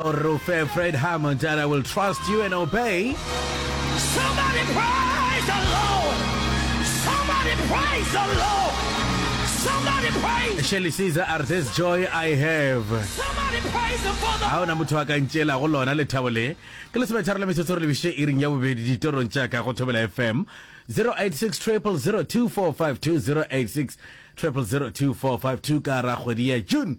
Rro Fred, Fred Hammond, and I will trust you and obey. Somebody praise the Lord. Somebody praise the Lord. Somebody praise. Shelly Caesar, are this joy I have? Somebody praise the Father. ga ona motho a ka ntšeela go lona lethabo le ke lesometharo la metsotso re lebiše iring ya bobedi ditorong tša ka go thobela fm 086 0002452 086 0002452 ka ra kgwedi ya june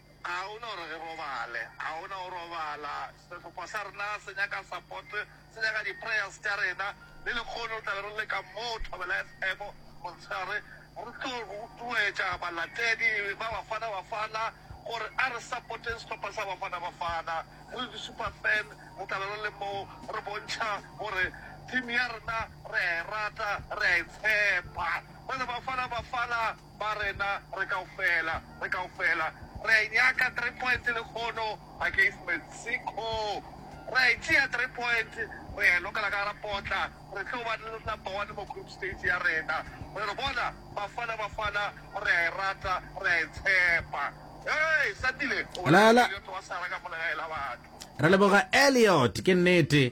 Ga o na gore re robale, ga o na go robala. Sehlopha sa rena se nyaka support, se nyaka di-prayers tša rena. Le lehono re tla be re le ka mo Thobela FM motshegare, re tlo rotloetša balatedi ba Bafana Bafana gore a re support-eng sehlopha sa Bafana Bafana. Re le di-super fan re tla be re le mo re bontšha gore team ya rena re a e rata, re a e tshepa. Ba re Bafana Bafana! Ba rena re kaofela, re kaofela re a e nyaka three point lekgono against Mexico. Re a e tšea three point, re a e lokela ka gara potla. Re tlo ba number one mo group stage ya rena. Re re bona Bafana Bafana, re a e rata, re a e tshepa. Hei, Sandile o Lala. bolela ka Elliot wa sara ka mola ga e la batho. Re leboga Elliot, ke nnete.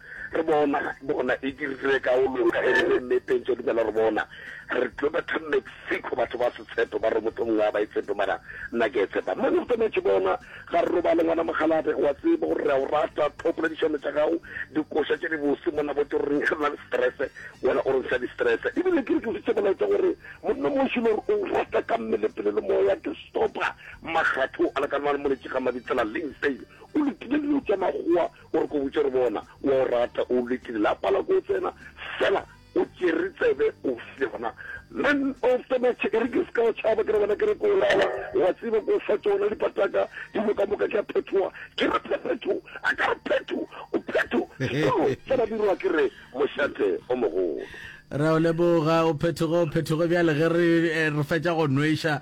Re bona ga bona e dirile ka o loka e rile mme pentso dumela re bona re tlo ba tla Mexico batho ba se tshepe ba re motho mongwe a ba e tshepe mara nna ke e tshepa mane go tsametše bona ga re robale ngwana mogalabe wa tseba gore re a o rata tlhopela dišano tša gago dikoša tše di bose monna botse gore reng re na le stress wena o re ntsha di stress ebile ke re ke fitse molaetsa gore monna moši le gore o rata ka mmele pele le moya ke stopa magatho a le ka nwa le moletše ga mabitsela leng fail o lokile dilo tša magoa O re ko botše gore bona o a o rata, o lekile la pala ko o tsena fela o tšere tsebe o file gona man of the match. E re ke se ka o tšhaba ke re bona ke re ko o lala wa tseba ko o fa tšona dipataka di boka moka ke a phethoa ke re phephetho a ka re phetho o phetho sekolo sa badirwa ke re mošate o mogolo. Re a o leboga o phethoge o phethoge bjale ge re eh, re fetša go nweša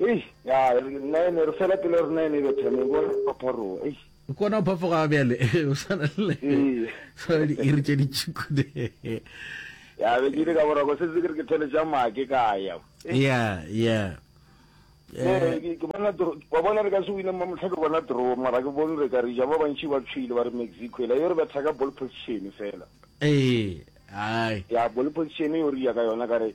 Eish, ya, nine, re fela pelo ya rena e ne e betha, ne bona phapharoga, eish. O kona go phafoga bjale, o swana le, Ee. swana le diiri tše ditšhikude. Ya, be ke ile ka boroko, se se ke re ke thole tša make ka ya. Ya, ya. Ne, Eh, ke ke bona dro, wa bona re ka se wine mamohla ke bona draw, mara ke bone re ka re ja, ba bantši ba tshwile ba re Mexico, ela yo re betha ka ball position fela. ee, hai. Ya, ball position yo re ya ka yona, ka re,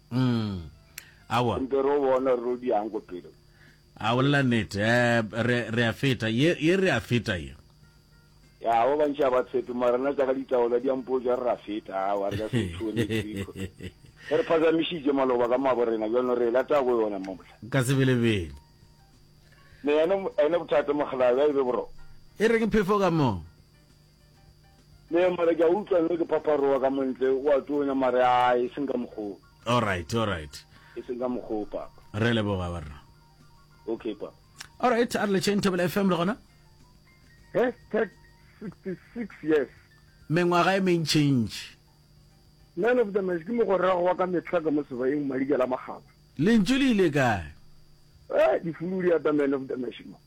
Mm. Awa. Re mpe ro bona re ro di yang ko pele. A bolela nete. Eh, re, re a feta. Ye, ye re a feta ye. Ya, ba bantši a ba tshepe, mara nna tša ka ditaola di a mpotša re ra feta, awa, re ka se tšhone Jeriko. E re phazamišitše maloba ka mabo rena, bjalo re e lata go yona mo mohla. Ka sebelebele. Ne, ene, ene bothata, Mokgalabje, a e be boroko. E reng phefo ka mo? Ne mara ke a utlwa nno ke phaparowa ka montle o a tonya mare a e seng ka mokgoo. Alright alright. E seng ka mokgoo papa. Re leboga ba rena. Okay papa. Alright a re le chain Thobela FM le gona. Hashtag 66 years. Mengwaga e mentšintši. Man of the match ke mogorago wa ka mehla ka mo sebayeng Madikela Makgaba. Lentšu le ile kae? Eh, difulu di ata man of the match mo.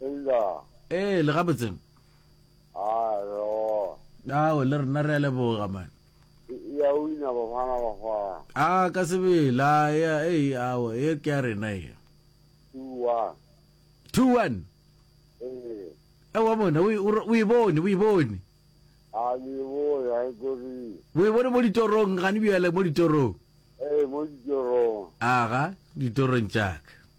Eila. Ee, le gabotse. Alo. Ao, le rena re a leboga man. Ya o ina ba bana ba fa. A ka sebela, ya ei ao, e ke ya rena e. Tua. 2-1. Ee. E wa bona, o e- o re- o e bone, o e bone. A le bo ya e kori. O e bone mo ditorong, gane bjale mo ditorong. Ee, mo ditorong. Aga, ditorong tša ka.